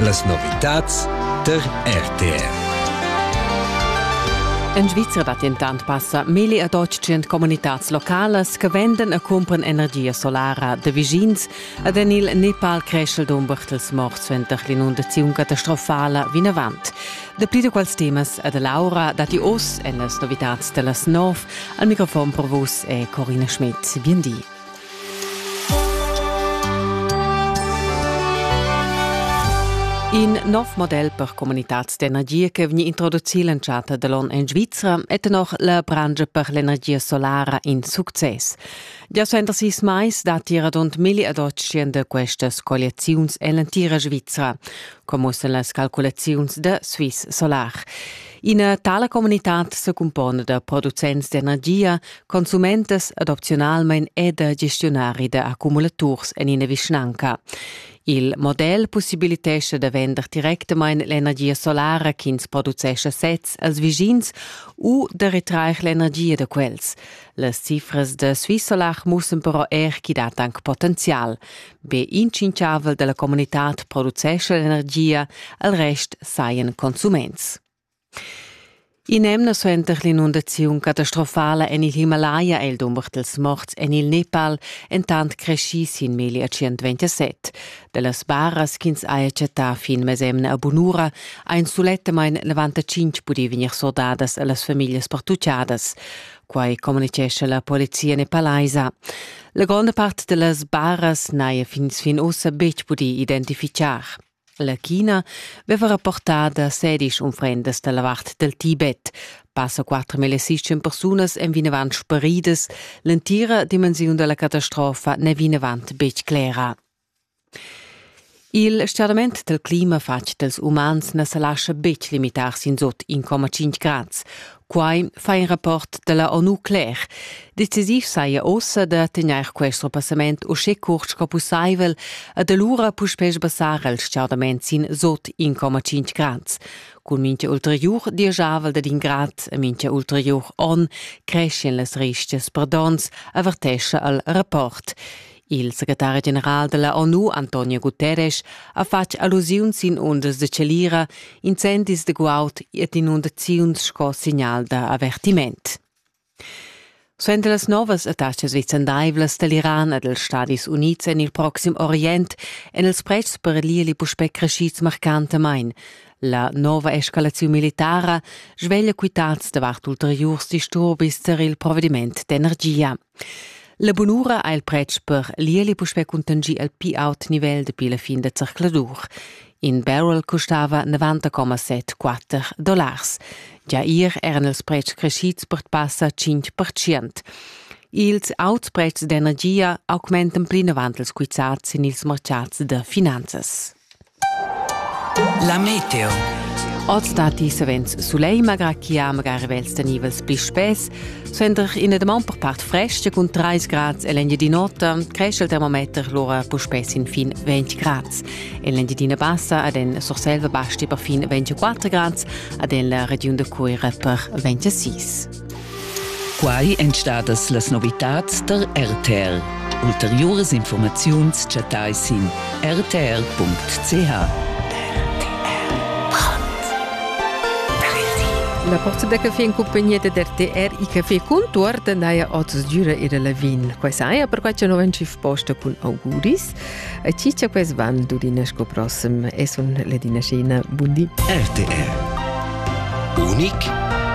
Las novitads tar RTR. En Svizra dat dentant passa meli ad otg communitads localas che vendan e cumpran energia solara de vischins ad en il Nepal creschel dum Bertels mort suenter l'inundaziun catastrofala vinavant. Dapli da quels temas ad Laura dati oz en las novitads da las nov. Al microfon per vus è Corina Schmidt. Bien di. In nov model per comunitads d'energia che vegni introducì l'entschatta da l'on en Svizra è tenor la brangia per l'energia solara in success. Gia suenter sis mais datti radund milli ad otschien da questas colliaziuns en l'entira Svizra, come mussen las calculaziuns da Swiss Solar. Ina tala communitad secumpona da producents d'energia, consumentas adopzionalmein e da gestionari da accumulaturs en ina vischnanca. Il model possibilitescha da vender directamain l'energia solara ch'ins producescha sez als vischins u da retrair l'energia da quels. Las cifras da Swissolar mussen però er ch'i dat anc potenzial. be intschinchavel dalla communitad producescha l'energia, al rest sajan consuments. In'emna suenter l'inundaziun catastrofala en il Himalaya è il dumber dels morts en il Nepal entant creschì sin meglio 127. Dallas barras ch'ins haja chattà fin mesemna a bunura ein sulettamain 95 pudì vegnir sordadas a las famiglias pertuccadas. Quai communicescha la polizia nepalaisa. La gronda part da las baras n'haja fins fin ussa betg pudì identifichar. La China veva rapportà da sedisch unfrendas da la vart dal Tibet. Passa 4.600 persunas èn vinavant sparidas. L'entira dimensiun da la catastrofa n'è vinavant betg clera. Il stgaudament dal clima fatg dals umans na sa lascha betg limitar sin sut 1,5 grads. Quai fa in rapport da la ONU cler. Decisiv saja ossa da tegnair quest repassament uschè curt sco pussaivel ed alura puspè sbassar il stgaudament sin sut 1,5 grads. Cun mintga ulteriur dieschavel dad in grad e mintga ulteriur onn creschien las rischias per donns, avertescha il rapport. Il secretari general della ONU Antonio Guterres ha fatg allusiun sin undas de celira, incendis de guaud et inundaziuns sco signal da avertiment. Suenter las novas attaccas vicendaivlas dall'Iran e dels Stadis Unids en il proxim Orient èn els prezs per l'ili puspè crescids marcantamain. La nova escalaziun militara sveglia quitads davart ulteriurs disturbis tar il provediment d'energia. La bunura ha il pretsch per l'ieli puspè cuntanschì al pli aut nivel dapi la fin da zercladur. In barrel custava 90,74 dollars. Gia ier eran ils pretschs crescids per passa 5%. Ils auts pretschs d'energia augmentan plinavant ils quizzats sin ils mercats da finanzas. La meteo. Oz datti savens sulegl, malgrà ch'i ha magari vels da nivels pli spess. Suenter ina damaun per part frestga cun 30 grads en l'Engiadin'Ota cresce il termometer lura puspè sin fin 20 grads. En l'Engiadina Bassa ad en Surselva basti per fin 24 grads, ad en la regiun da Cuira per 26. Quai èn stadas las novitads tar RTL. Ulteriuras informaziuns chattai sin rtl.ch. La porta da caffè in compagnia da RTR e Caffè Contuorta naja oz giura era la vin. Quai saja perquai che novan schiff posta cun auguris. A ciccia quais van durina sco prossem. E sun Ledina Scena. Bundi. RTR. Unic